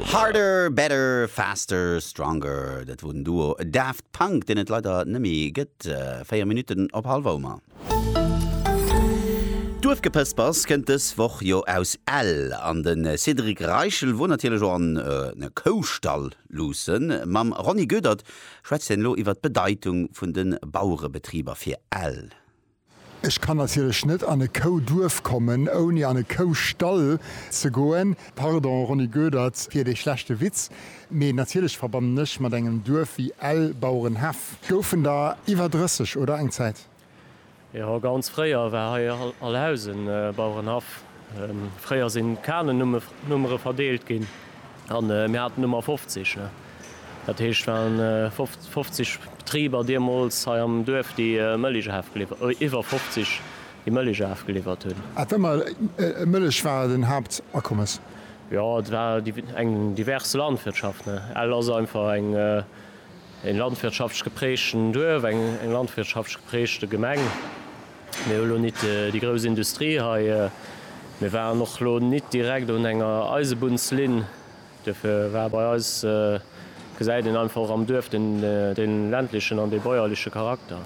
Harder, Better, Faster, Stronger, dat wor den Duo Daft Punk, deen et leider nëmmi gëtt. 4 Minutten op halwer Omer. Duerfgepëspers kënnt dës Woch jo aus Ell, an de Cédric Reichel wor natierlech och an e Koustall luussen. Mam Ronny Goedert schwätzt hien elo iwwer d'Bedeitung vun de Bauerebetriber fir Ell. Ech kann natierlech net an e Kouduerf kommen, ouni an e Koustall ze goen. Pardon, Ronny Goedert, fir dee schlechte Witz, mee natierlech verbannen ech mat engem Duerf wéi Ell, Bauerenhaff. Goufen der iwwer 30, oder? Eng Zäit? Jo, ganz fréier war hei all Haus e Bauerenhaff. Fréier sinn d'Kanen-Nummere verdeelt ginn, An mir haten ëmmer 50, ne? Dat heescht, et waren 50 Betriber deemools hei am Duerf, déi Mëllech afgeliwwert, iwwer 50, déi Mëllech afgeliwwert hunn. Awer ëmmer d'Mëllech war den Haaptakommes? Jo, et war eng divers Landwirtschaft, ne? Ell ass einfach eng, e landwirtschaftsch geprägten Duerf, eng landwirtschaftsch geprägte Gemeng. Mir hu lo nit déi grouss Industrie hei. Mir waren och lo nit direkt un enger Eisebunnslinn. Duerfir war bei eis, gesäit een einfach och am Duerf, dee ländlechen an dee bäuerleche Charakter.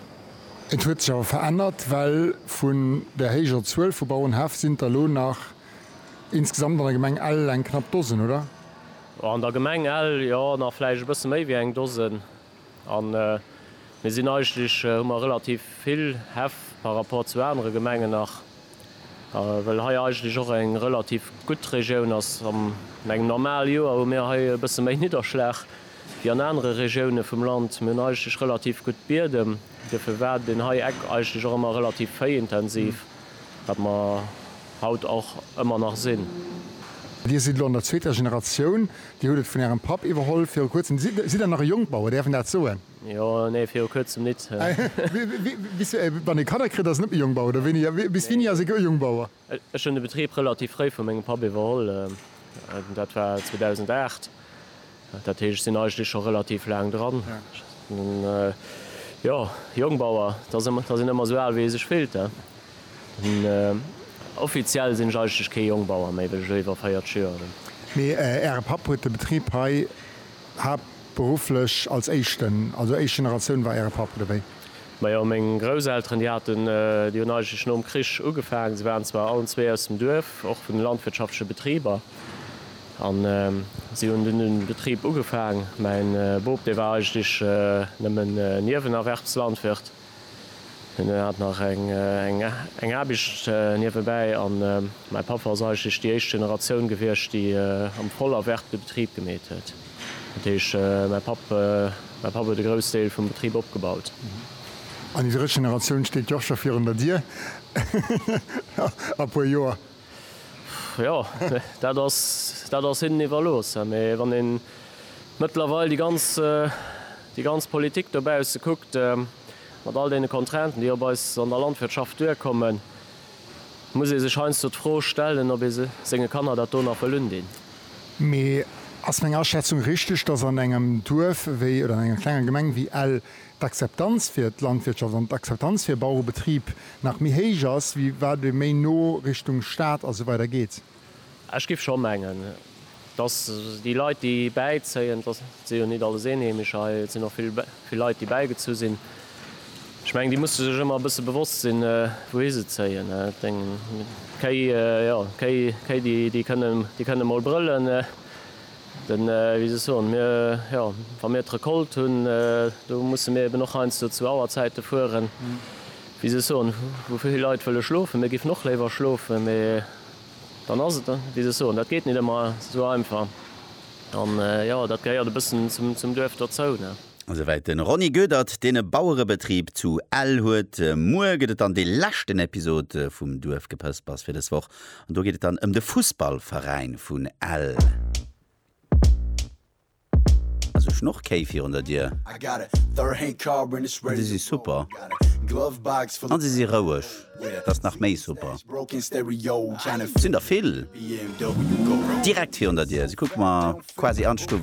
Et huet sech awer verännert, well vun där héijer Zuel vu Bauerenhäff sinn der lo nach insgesamt an der Gemeng Ell eng knapp Dosen, oder? An der Gemeng Ell, jo, nach vläicht e bësse méi wéi eng Dosen. An mir sinn eigentlech, hu mer relativ vill Häff par rapport zu anere Gemengen nach, well hei eigentlech och eng relativ gutt Regioun ass. An engem normale Joer hu mir hei e bësse méi Nidderschlag wéi an anere Regioune vum Land. Mir hunn eigentlech relativ gutt Biedem, duerfir war deen hei Eck eigentlech och ëmmer relativ véiintensiv. Wat mer haut och ëmmer nach sinn. Dir sidd elo an der zweeter Generatioun. Dir hutt et vun ärem Papp iwwerholl viru kuerzem. Sidd der nach e Jongbauer, däerf een dat soen? Jo, nee, viru kuerzem nit. Bis wann ee Kanner kritt, ass een net méi Jongbauer, oder wéini? Bis wéini ass ee gou Jongbauer? Ech hunn de Betrib relativ fréi vu mengem Papp iwwerholl, dat war 2008. Dat heescht, ech sinn eigentlech scho relativ laang dran. Jo, Jongbauer, da sinn ëmmer esou al, wéi ee sech fillt. Offiziell sinn ech eigentlech kee Jongbauer méi, well ech elo iwwer 40 Joer hunn. Mee Äre Papp huet de Betrib hei haaptberufflech als éischten, also éischt Generatioun war Äre Papp, oder wéi? Majo, meng Grousselteren, déi haten, déi hunn eigentlech nom Krich ugefaangen. Se waren zwar allen zwee aus dem Duerf, och vun de landwirtschaftleche Betriber. An si hunn dunn den Betrib ugefaang. Mäin Bop, dee war eigentlech nëmmen Niewenerwerbslandwirt. Hien hat nach eng Aarbecht niewebäi. An mäi Papp ass eigentlech déi éischt Generatioun gewiescht, déi am Vollerwerb de Betrib gemeet huet. Dat heescht, mäi Papp, mäi Papp huet e grouss Deel vum Betrib opgebaut. An déi drëtt Generatioun steet jo och scho virun der Dier a puer Joer. Jo, dat ass, dat ass hinnen iwwerlooss. Mee wann ee mëttlerweil déi ganz, déi ganz Politik dobausse kuckt, mat all deene Contrainten, déi op eis an der Landwirtschaft duerkommen, muss ee sech heiansdo d'Fro stellen, ob ee senge Kanner dat do nach wëll undinn. Mee ass meng Aschätzung richteg, dass an engem Duerf wéi, oder an enger klenger Gemeng wéi Ell, d'Akzeptanz fir d'Landwirtschaft an d'Akzeptanz fir e Bauerebetrib nach méi héich ass, wéi wat ee méi no Richtung Stad a sou weider geet. Ech géif scho mengen, dass déi Leit, déi bäizéien, dass, et si jo nit alles Eenheemecher hei, et sinn och vill, vill Leit, déi bäigezu sinn, ech mengen, déi musse sech ëmmer e bësse bewosst sinn, wouhi se zéien. Et eng Kéi, jo, Kéi, Kéi, déi, déi kënnen, déi kënnen emol brëllen. Den, wéi soll ech soen, mir, jo, wa mir d'Recolte hunn, do musse mir eben och heiansdo zu Auerzäite fueren, wéi soll ech soen, wou vill Leit wëlle schlofen. Mir géifen och léiwer schlofen, mä dann ass et, wéi soll ech soen, dat geet net ëmmer esou einfach. An, jo, dat gehéiert e bëssen zum Duerf dozou, ne. Esouwäit de Ronny Goedert, deen e Bauerebetrib zu Ell huet. Muer gëtt et dann dee leschten Episod vum Duerfgepëspers fir dës Woch. An do geet et dann ëm de Fussballveräin vun Ell. Ass e Schnorrkéi virun der Dier? An si si super. An si si roueg. Dat ass nach méi super. Sinn der vill? Direkt virun der Dier. Si kucke mer quasi an d'Stuff eran.